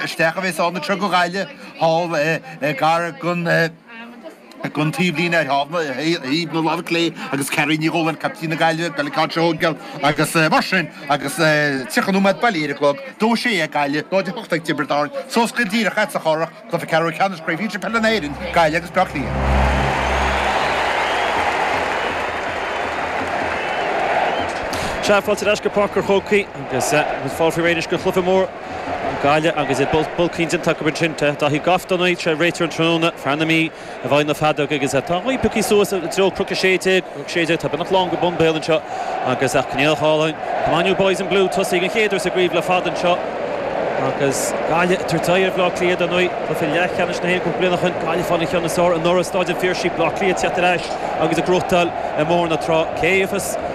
isteach a bhéas ann i Tríocha Ghaile thall gar don taobhlíne ar thaobh na láimhe clé agus Carrie Ní Dhúláin, caiptín na Gaillimhe, Billy Cott Shoguel agus mar sin agus tríocha nóiméad bailithe ar a chlog, dó a sé ag Gaillimh, dó a hocht ag Tiobraid Árann, sos go díreach ait sa chorrach, cluiche ceathrú ceannais Chraobh Shinsir Peile na hÉireann, Gaillimh agus Bleá Cliath. Sea, fáilte ar ais go Páirc an Chrócaigh agus fáilte roimh éineas go Chluiche Mór Gaillimh agus iad bulcaí indéanta acu ansin. Dáithí Gough dar ndóigh, réiteoir an tráthnóna, fear na Mí, i bhfeighil na feadóige agus tá an ghaoth pioctha suas i dtreo Chnoc 16. Tá beagnach lán go bonn béal anseo agus ach gníomhach álainn. Come on you boys in blue, tosaíodh an chéad uair sa gcraobh le fada anseo agus Gaillimh ag tabhairt aghaidh ar Bhleá Cliath, dar ndóigh, cluiche leathcheannais na hÉireann cúpla bliain ó shin. Gaillimh ag fáil an cheann is fearr anuraidh i Stáid an Phiarsaigh, Bleá Cliath ag teacht ar ais agus ag gnóchtáil i mBóthar na Trá. Cé a thiocfas?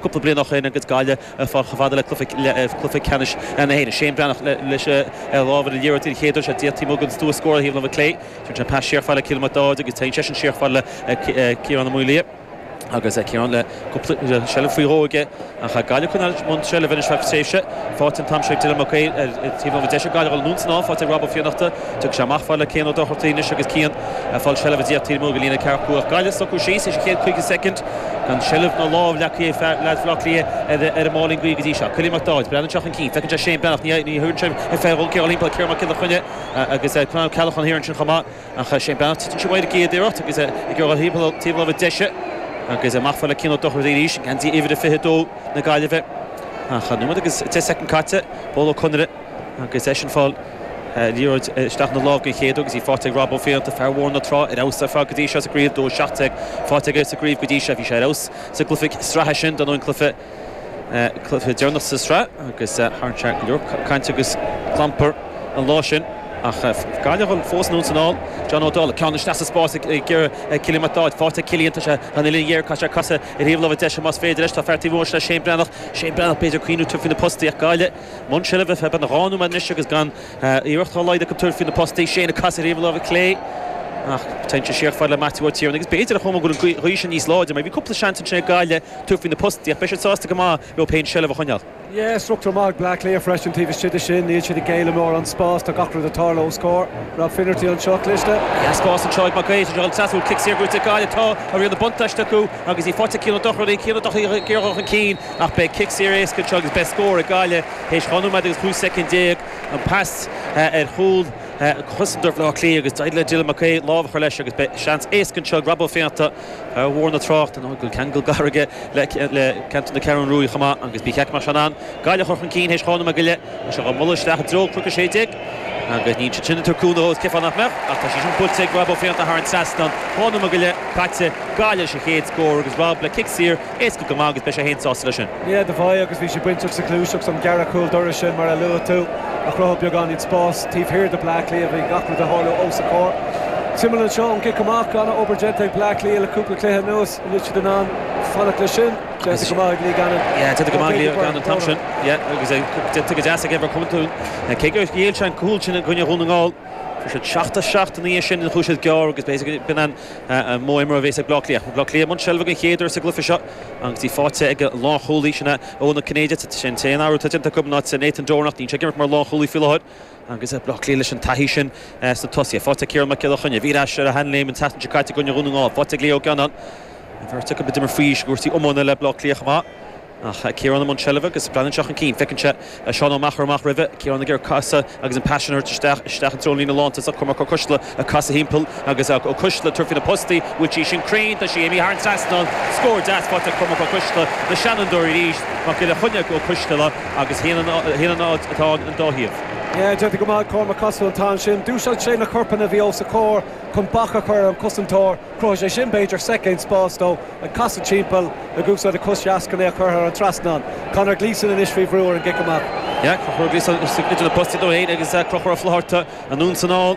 cúpla bliain ó shin agus Gaillimh ag fáil chomh fada le cluiche ceannais na hÉireann. Shane Breathnach leis an lámh ar an liathróid den chéad uair. Sea, taobh amuigh den stua scórála thaobh na láimhe clé. Téann sé pas siar fada le Cillian MacDáid agus téann seisean siar fada le Ciarán Ó Maolaodha. Agus Ciarán le cúpla seilbh faoi dhó aige. Ach tá Gaillimh i mbun seilbhe ar feadh tréimhse. Faighte an t-am seo ag Dylan Mac Aoidh ar thaobh láimhe deise. Gaillimh ag dul anonn is anall. Faighte ag Rob Ó Fiannachta. Tiocfaidh sé amach fad le Cian Ó Dochartaigh anois agus Cian ag fáil seilbhe. Taobh amuigh den líne ceathracha cúig. Gaillimh socraithe síos théis an chéad 50 soicind. Gan seilbh ná lámh leagtha ag leaids Bhleá Cliath ar an máilín gaoithe go dtí seo. Cillian MacDáid, breathnaíonn sé chun cinn. Feiceann sé Shane Breathnach, triúr nó ceathrar ina thimpeall, Ciarán Mac Giolla Chainnigh agus Con Ó Ceallacháin thiar ansin chomh maith. Ach Shane Breathnach, tugann sé uaidh ag iarracht agus ag rith taobh láimhe deise agus amach fad le Cian Ó Dochartaigh arís i ngeansaí uimhir a 22 na Gaillimhe. Ach nóiméad agus 10 soicind caite. Pól Ó Conaire. Agus eisean ag fáil liathróid isteach ina lámh den chéad uair agus í faighte ag Rob Ó Fiannachta, fear Bhóthar na Trá, ar fheabhas ar fad go dtí seo sa gcraobh, 2-17 faighte aige sa gcraobh go dtí seo. Bhí sé ar fheabhas sa gcluiche sraithe sin, dar ndóigh an cluiche deireanach sa tsraith, agus tharraing sé go leor cainte agus clampair an lá sin. Ach Gaillimh fós anonn is anall. John Ó Dálaigh, ceann isteach sa spás ag iarraidh Cillian McDaid. Faighte ag Cillian, tá sé thar an uillinn ghéar, caithfidh sé casadh ar thaobh láimhe deise más féidir leis. Tá fear taobh amuigh de, sin é Shane Breathnach. Shane Breathnach, b'fhéidir ag smaoineamh tabhairt faoi na postaí ach Gaillimh. I mbun seilbhe beagnach dhá nóiméad anois agus gan iarracht dá laghad acu tabhairt faoi na postaí. Shane ag casadh ar thaobh na láimhe clé ach téann sé siar fada le Maitiú Ó Tiarnaigh agus b'fhéidir an chuma go bhfuil an ghaoth sin níos láidre mar bhí cúpla seans ansin ag Gaillimh tabhairt faoi na postaí ach beidh siad sásta go maith leo féin seilbh a choinneáil. Struchtúr maith ag Bleá Cliath freisin taobh istigh de sin. Níl siad ag géilleadh mórán spáis. Tá gach rud ag tarlú os comhair Rob Finnerty anseo cliste. Tá spás anseo ag Mac Aoidh sa drioglann sásúil. Cic saor buaite ag Gaillimh. Tá riail an bhuntáiste acu agus í faighte ag Cian Ó Dochartaigh. Cian Ó Dochartaigh ag iarraidh a dhul chun cinn. ach beidh cic saor éasca anseo agus beidh scór ag Gaillimh théis dhá nóiméad agus 15 soicind. An pas ar chúl ag cosantóir Bhaile Átha Cliath agus d'éirigh le Dylan Mac Aodha lámh a chur leis agus beidh seans éasca anseo ag Rob Ó Fionnachta, fear Bhóthar na Trá, a bhfuil ceangal gar aige le ceantar na Ceathrún Rua chomh maith agus é ag féachaint an Ghaillimh a chur chun cinn théis dhá nóiméad go leith. Tá sé dhá bualadh isteach i dtreo an chnoic 16 agus níl siad sin ag cur cúnamh ós ciofáil nach mbeadh ach tá sé sin buailte ag Rob Ó Fionnachta thar an trasnán. Dhá nóiméad go leith caite, Gaillimh leis an chéad scór agus Rob le cic saor Éasca go maith agus beidh sé féin sásta leis sin. Ní raibh do bhae agus bhí sé bainteach sa ghluaiseacht an gearradh cúl dorais sin mar a luaigh tú, a chruthaigh beagáinín spás taobh thiar de Bleá Cliath, bhí gach rud ag tarlú os a gcomhair. Suimiúil anseo ón gcic amach, ana obair déanta ag Bleá Cliath le cúpla cluiche anuas, an bhfuil siad in ann fanacht leis sin? Déanta go maith ag Lee Gannon, déanta go maith ag Lee Gannon an t-am sin agus déanta go deas ag Evan Comerford, cé gur ghéill sé an cúl sin i gcoinne Dhún na nGall. Fuair siad seacht as seacht ina dhiaidh sin, chuaigh siad gearr agus b'fhéidir go b'in an modh imeartha a bhéas ag Bleá Cliath. Bhí Bleá Cliath i mbun seilbhe den chéad uair sa gcluiche seo agus í faighte ag an lánchúlaí, sin é Eoin Ó Cinnéide. Tá sé ar an t-aon athrú atá déanta acu in áit Nathan Doran ach níl sé ag imirt mar lánchúlaí faoi láthair agus Bleá Cliath leis an taithí sin sna tosaithe. Faighte ag Ciarán Mac Giolla Chainnigh. Bhí ar ais ar a shean-léim an tseachtain seo caite i gcoinne Dhún na nGall. Faighte ag Lee Gannon. An bheirt acu ag imirt faoi aois i gcúrsaí iomána le Bleá Cliath chomh maith. Ciarán i mbun seilbhe agus leanann sé chun cinn. Feiceann sé Seán Ó Meachair amach roimhe, Ciarán ag casadh agus an pas sin á thabhairt isteach i dtreo an líne lántosach, Cormac Ó Coistealla ag casadh timpeall agus Ó Coistealla ag tabhairt faoi na postaí, bhfuil sí sin cruinn, tá sí imithe thar an trasnán, scór deas faighte ag Cormac Ó Coistealla, na seanfhondúirí arís, Mac Giolla Chainnigh chuig Ó Coistealla agus ionann atá an dá thaobh. Yeah, déanta go maith ag Cormac ag casadh an t-am sin, d'úsáid sé na corpanna a bhí os a chomhair chun bac a chur ar an cosantóir, Chruthaigh sé sin, b'fhéidir, soicind spáis dó ag casadh timpeall, ag úsáid a chos dheas chun é a chur thar an trasnán. Conor Gleeson anois faoi bhrú ar an gcic amach. Conor Gleeson idir na postaí é féin agus Conchúr Ó Flatharta anonn san fhál.